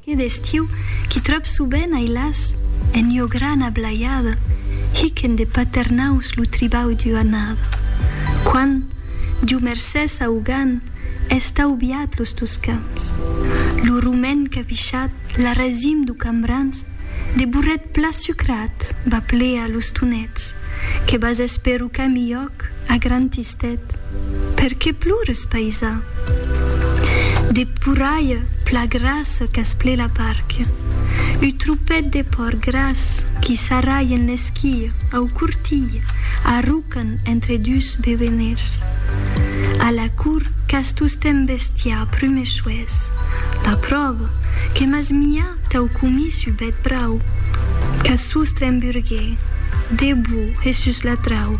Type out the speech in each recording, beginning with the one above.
Que d'estiu qu'i tròb soben ai las en ua grana blaiada hiquen de paternaus lo tribau d'ua annada. Quan, Diu mercés au gan, es taubiat los tos camps, lo romen capichat la resim d'u cambrans de burret pla sucrat va plear los tonets que vas espèr u cami iòc a gran Ted. Per qué plores, païsà? De porralha pla grassa qu'as ple la parca, uu tropet de pòrc gras qui s'arralhen l'esquia au cortilh, arrocan entre dus bebeners. A la cour qu'as tostemp bestiar prumechoès, la pròva que m'as miá tau comís uu bèth brau, qu'as sostre en burguer, debou e sus la trau,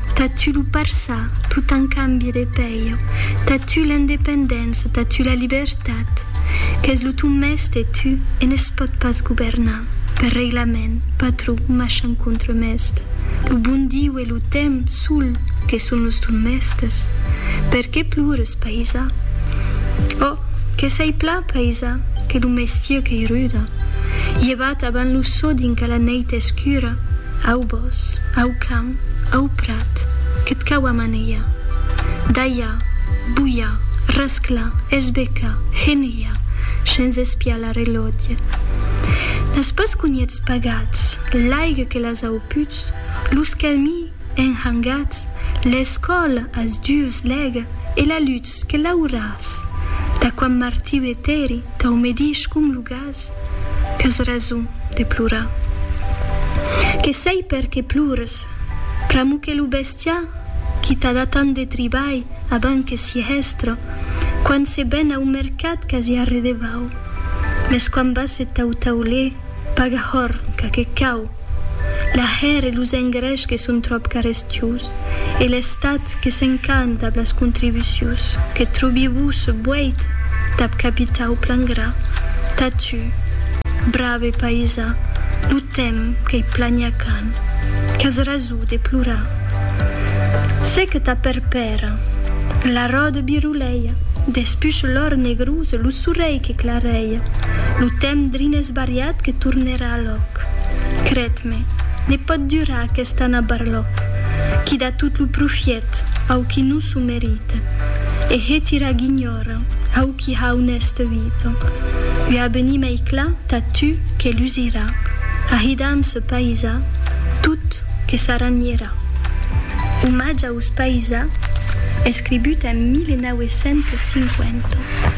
T'as tu lo parçà, tu t'an cambi de pèir. T'as tu l'independéncia, t'as tu la libertat. Qu'es lo ton mèste, tu, e ne's pòt pas governar. Per reglament, patró, machan contremèst. Lo bon Diu e lo temps, sol, que son los ton mèstes. Per qué plores, païsà? Ò, que s'ei pla, païsà, que lo mestier qu'ei ruda. Llevat avant lo sò dinca la nèit escura. Au bòs, au camp, au prat, que't cau amanejar, dalhar, bulhar, rasclar, esbecar, genejar, shens espiar la relòtge. N'as pas conhèts pagats, l'aigue que las au puts, los camí enhangats, l'escòl as dues lèg e la lutz que l'auràs, d'aquam martiu eteri t'au medish conlugat, Plures, qu'as rason de plorar. Que sei per que plures, pr'amor que lo bestiar qui t'a dat tant de tribalh abans que si hèstre, quand se ven au mercat qu'as ja redevau, mes quand vas se tau-tau-lhe, paga horn, qu'aqué cau. L'ahèr e los engrèchs que son tròp carestius, e l'Estat que s'encant dab las contribucius, que trobi vos boeit dab capitar au plan gras, tà tu, brave païsà, lo temps qu'ei plania quand qu'as raso de plorar. Se que tà perpèra, la ròde biroleia, despuch l'òr negrós, lo sorelh que clareia, lo temps drin esbariat que torne Barlòc, cred-me, ne pòt durar aquest anar barlòc, qui da tot lo profièt au qui non s'o merita, e hetira guinhòra au qui ha un èste vita. Ua abenir mei clar tà tu que lusirà, ahida en ce païsà, tot que s'aranhirà. Omatge aus païsà, escribut en 1950.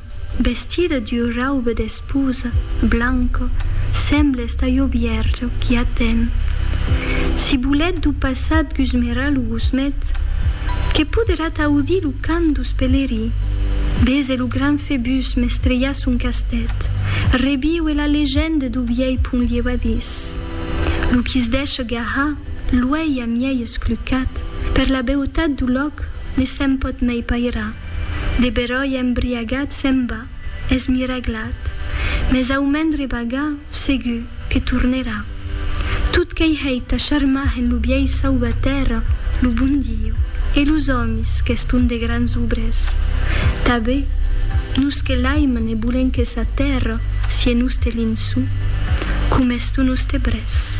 Vestida d'ua rauba d'esposa blanca, semble esta ua bièrja qui aten. Si bolet d'u passat gusmerà lo gusmet, que poderà t'audir lo cant dus pelerí, bese lo gran Febus mestrejar son castet, reviue la legenda d'u vièi pont lievadís. Lo qui es deisha garrar l'uèlh amièi esclucat per la beutat d'u lòc ne se'n pòt mei pairar. De beròi embriagat se'n va, es miraglat. Mes au mendre vaga, segur que tornerà. Tot qu'ei hèit a charmar en lo biais sau ba tèrra lo bon Diu e los òmis qu'eston de grans obrès. Tabé, nos que l'aiman e bolen que sa tèrra sie noste linço, com es to noste brès.